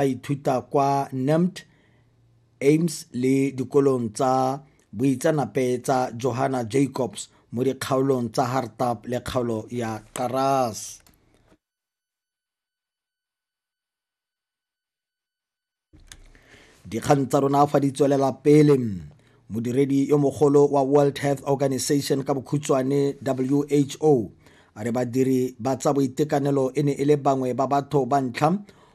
a ithuta kwa NEMT, aims le dikolong tsa boitseanape tsa Johanna Jacobs mo dikgaolong tsa Hartap le kgaolo ya Karas. dikgang tsa rona fa di tswelela pele modiredi yo mogolo wa world health organization ka bokhutshwane who a re badiri ba tsa boitekanelo e ne e le bangwe ba batho ba ntlha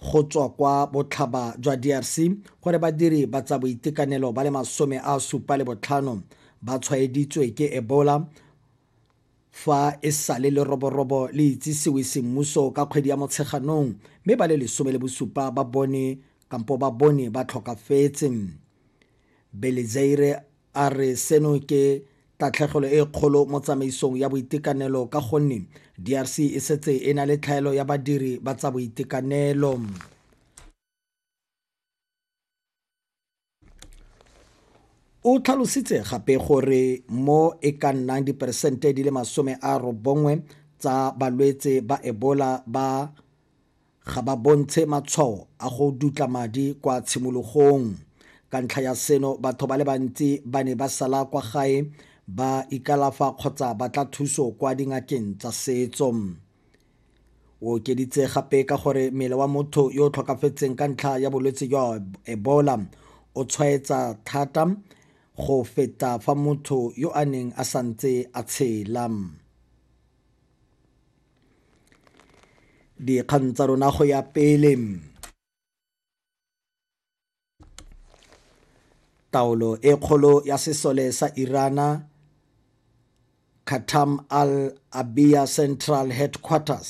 go tswa kwa botlhaba jwa DRC gore badiri ba tsa boitekanelo ba le masome a supa le botlhano ba tshwaeditswe ke Ebola fa e sale leroborobo le itsisiwe semmuso ka kgwedi ya Motsheganong mme ba le lesome le bosupa ba bone kampo ba bone ba tlhokafetse. Belizaire A re seno ke tatlhegelo e kgolo mo tsamaisong ya boitekanelo ka gonne DRC e setse e na le tlhaelo ya badiri ba tsa boitekanelo. O tlhalositse gape gore mo e ka nnang diperesente di le masome a robongwe tsa balwetse ba Ebola ba ga ba bontshe matshwao a go dutla madi kwa tshimologong. Ka ntlha ya seno, batho ba le bantsi ba ne ba sala kwa gae ba ikalafa kgotsa ba tla thuso kwa dingakeng tsa setso. O okeditse gape ka gore mmele wa motho yo o tlhokafetseng ka ntlha ya bolwetse jwa Ebola o tshwaetsa thata go feta fa motho yo a neng a santse a tshela. dikgang tsa rona go ya pele taolo e kgolo ya sesole sa irana khatam al abia central headquarters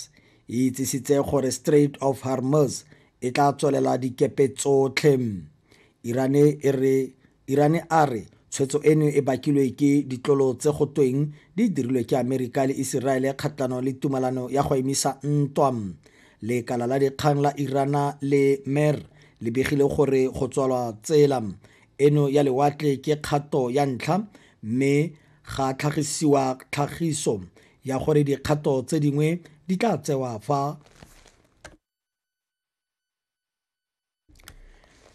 e itsisitse gore strait of hormuz e tla tswelela dikepe tsotlhe irane e re Irane a re tshwetso eno e bakilwe ke ditlolo tse go tweng di dirilwe ke Amerika le Iseraele kgatlhanong le tumalano ya go emisa ntwa. Lekala la dikgang la Irana le Mer le begile gore go tswalwa tsela eno ya lewatle ke kgato ya ntlha mme ga tlhagisiwa tlhagiso ya gore dikgato tse dingwe di tla tsewa fa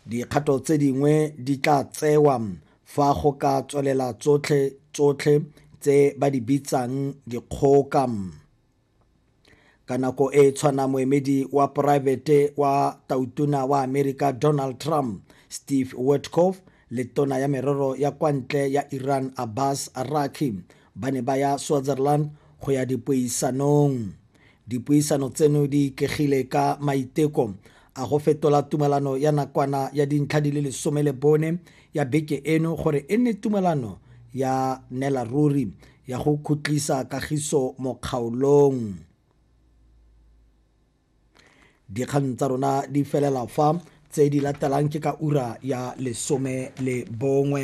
Dikgato tse dingwe di tla tsewa fa go ka tswelela tsotlhe tsotlhe tse ba di bitsang dikgoka. Ka nako e e tshwana moemedi wa poraefete wa tautona wa Amerika Donald Trump, Steve Witkoff le tona ya merero ya kwa ntle ya Iran Abbas Araki ba ne ba ya Switzerland go ya dipuisanong. Dipuisano tseno di ikegile ka maiteko a go fetola tumalano ya nakwana ya dintlha di le lesome le bone ya beke eno gore e nne tumalano ya nela ruri ya go khutlisa kagiso mo kgaolong. Dikgang tsa rona di felela fa tse di latelang ke ka ura ya lesome le bongwe.